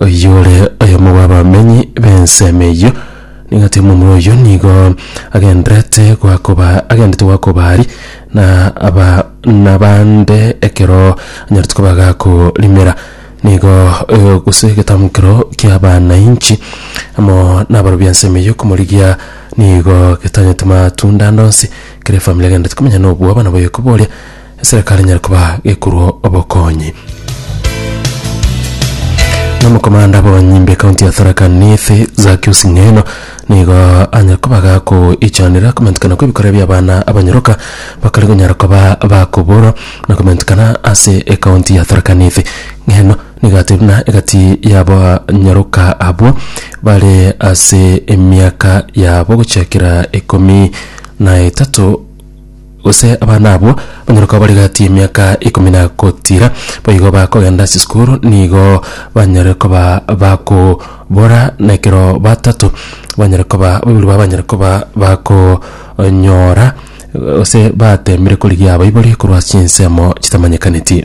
oyore oyomo bw'abamenyi b'ensemo eyio, nigo ati omomura oyio nigo agenderete goakoba agendete goakoba aria, na aba nabande ekero anyarete koba agakorimera. Nigo oyo gose egetamgo keroo ki'abanainchi amo nabarobia b'ensemo eyio komorigia nigo getanyeti matunda ande onsi, kera efamiri egenderete komenya nobwoba nabo oyokoba oria. Eserekari enyare koba gekorwa obokonyi. Nomokomanda bw'abanyimbi ekaunti ya Tharaka Nithi Zakius Ng'eno nigo anyare koba gakoichanera komentikana kw'ebikorwa bi'abana abanyoroka bakare konyara koba bakoborwa na komentikana ase ekaunti ya Tharaka Nithi. Ng'eno nigo atebire buna egati y'abanyoroka abwo bare ase emiaka yabo gochakera ikomi na etato Gose abana abwo banyare koba bari gati y'emiaka ikomi na gotiira, boigo bakogenda chisukuru nigo banyare koba bakobora, na ekero batato banyare koba baibori babo banyare koba bakonyora gose bateemire korigia abaibori korwa ase chinsemo chitamanyekaneti.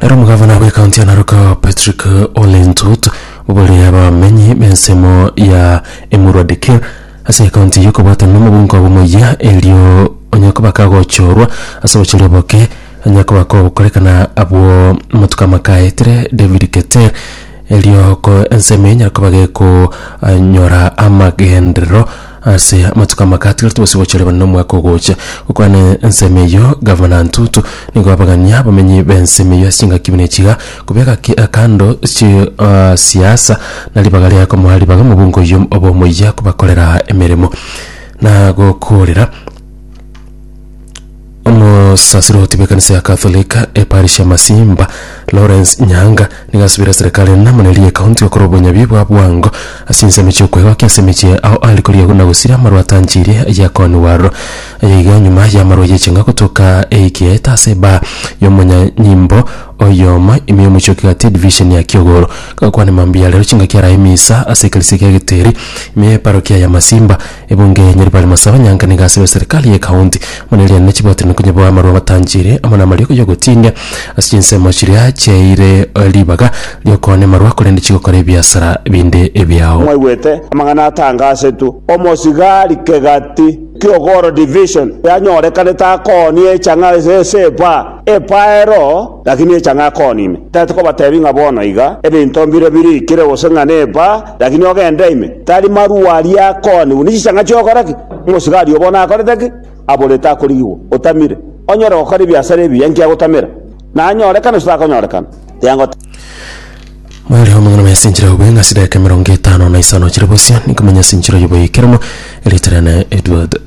Naro omogavana bw'ekaunti ya Narok Patrick Ole Ntut obororire abamenyi b'ensemo ya Emurua Dikir ase ekaunti eyio okobwatana n'omobunga obo omoyia erio onye koba kagochorwa ase obochori oboke onye koba kokorekana abwo amatuko amakaetire David Keter Erio ko ensemo enyare koba geko eh, nyora amagenderero ase amatuko amake atigarete gose gochoreba nomwaka ogocha gokwana ensemo eyio gavana ntutu nigo abagania abamenyi bensemo eyio ase chingaki buna echiga kobeka ki- eh, kando chi eh, siasa na ribaga ria komoa ribaga omobunge oyio obomoyia kobakorera emeremo na gokorera Omosasiroti bw'ekanisa ya Catholic eparish ya Masimba, Lawrence Nyanga, nigo asubire serikali enamune eria ekaunti gokora obonyabi bwa bwango ase ensemo chi'okwegokia ase emechie ao aria koria na gosira amarwa atanchirie ya Connie Warro. Aya iga nyuma y'amarwa y'eching'a gotoka eikieta ase ebaa y'omonyanyimbo oyomo ime y'omochie o Kigati edivision ya Kiogoro. Gakwane mambia ya rero chingaki arae misa ase eklisia ya Geteri ime y'eparokia ya Masimba. Ebunge ya Nyaribari Masaba Nyanka nigo asire serikali ye County buna eriane ne chibwatiri na konyaboa amarwa abatanchire amo namarioko yogotindia ase chinsemo chiria chiaeire ribaga riokoona emarwa korende chigokora ebiasara binde ebiao. Mwaigwete amang'ana atangasetwe, Omosigari kegati Kiogoro Division yanyorekanete akoonia echang'a ase esepa. Epaero, lakini echa ng'a kooni ime. Tari tokobateebia ng'a bono iga ebinto mbire biriikire gose ng'a neba, lakini ogende ime. Tari marua aria kooni buna chichang'a chi'ogokora ki? Omosigari oo bono akorete ki? Aborete akorigigwa. Otamire. Onyare gokora ebiasara ebiya inki agotamera? Nanyorekana gose takonyorekana? Tiangoteeba. Moerio amang'ana maya sinchera obe ng'a chidaeka emerongo etano na isano chire bosio, ninkomanya sinchera oyoboe ekeremo, erieta riane Edward.